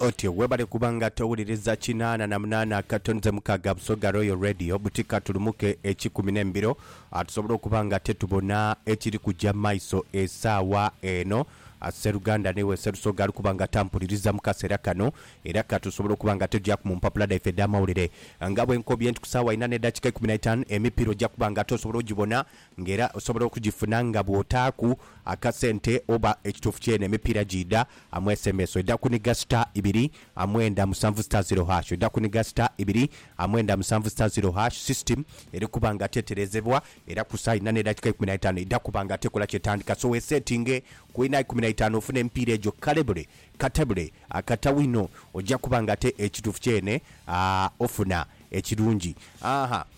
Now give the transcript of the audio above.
Otyo webale kuba nga towuliriza kinaana na munaana akato nze mukaaga Busoga Royal Radio buti katulumuke ekikumi n'embiro tusobole okuba nga tetubona ekiri kugya mu maiso esaawa eno. Sseruganda n'iwe Sserusoga ali kuba nga tampuliriza mu kaseera kano era ka tusobole okuba nga togyaku mu mpapula dhaife edh'amawulire. Nga bwe nkobye nti ku saawa inha n'eddakiika eikumi na itaanu emipiira ojja kuba nga tosobola ogibona nga era osobola okugifuna nga bw'otaaku akasente oba ekituufu kyene emipiira giidha amu sms oidha kuniga star ibiri amwenda musanvu star zero hash oidha kuniga star ibiri amwenda musanvu star zero hash system eri kuba nga teterezebwa era ku saa inha n'edakika ikumi na itaanu eidha kuba nga tekola kyetandika so wesetinge ku inha ikumi na itaanu ofune emipiira egyo kale bule katabule akata wino oja kuba nga ate ekituufu kyene aa ofuna ekirungi aa